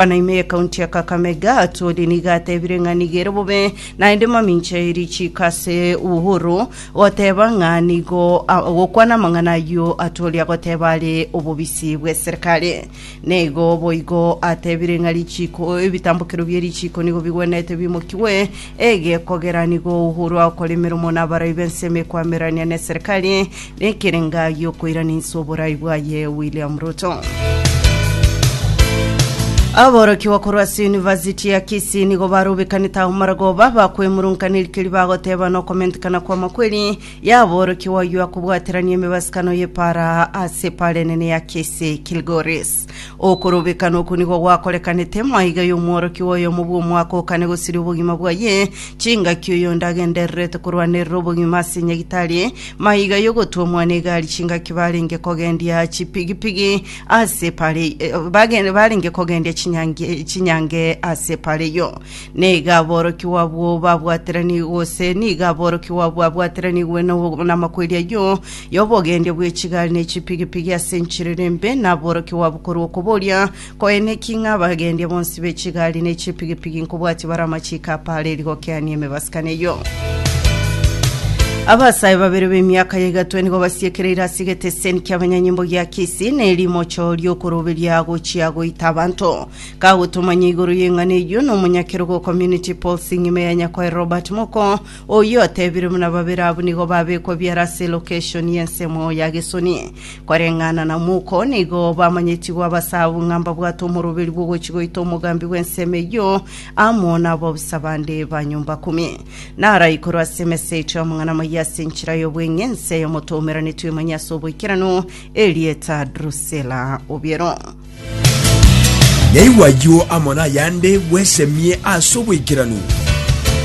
Gavana ime ye county ya Kakamega Atwoli nigo atebire ng'a nigo ere bobe naende mamincha e richiiko ase Uhuru goteba ng'a nigo a- gokwana amang'ana ayio Atwoli agoteba are obobisi bw'eserikari. Nigo boigo atebire ng'a richiiko ebitambokero bie richiiko nigo bigwenerete bimokigwe ege kogera nigo Uhuru agokora emeromo na abarai b'ense emekwamererania n'eserikari Ekerenga giokoiraniswa oborai bwaye William Ruto. Aborokigwa korwa ase University ya Kisii nigo barobekanete ao maragoba bakwemurunkaneri keri bagoteba nokomentekana kw'amakweri y'aborokigwa oyio akobwaterania emebasikano y'epara ase epara enene ya Kisii Kilgoris. Okorobekana oko nigo gwakorekanete maiga y'omworokigwa oyomo bw'omwaka okane gosiria obogima bwaye chingaki oyonde agendererete korwanerera obogima ase nyagitari Maiga y'ogotuomwa negari chingaki barenge kogendia chipigipigi ase pare bagende barenge kogendia chinyange chinyange ase pare yo. Neiga aborokigwa abwo babwateranigwe gose niga aborokigwa abwo abwateranigwe no- namakweri ayio y'obogendia bw'echigari ne chipigipigi ase enchiriri embe, naborokigwa abo korwa okoboria Koine ki ng'a abagendia bonsi be chigari ne chipigipigi nkobwatia bare amachiiko apareri gokeania emebasikano eyio? Abasae babere b'emiaka ya egatwe nigo basiekereire ase egeteseni ki'abanyanyimbo gia Kisii na erimocho ri'okoroberia gochia goita abanto. Kagotomanya igoro y'eng'ana eyio na omonyakerogo Community Policing ime ya Nyakoe Robert Moko, Oyio otebire buna babere abwo nigo babekwa biara ase elokeshoni y'ensemo ya Gesoni. Koreng'ana na omouko, nigo bamanyetigwe abasaabwo ng'a mbabwate omoroberi bw'ogochia goita omogambi bw'ensemo eyio amo nabobisa bande ba nyomba kumi. Naarae igoro ase emesa yaito y'amang'ana amayia ase enchera y'obweng'e, ense y'omoto omeranetwe emanye ase oboikeranu erieta Drusela obiero. Yaigwa ayio amo nayande, bwesemie ase oboikeranu.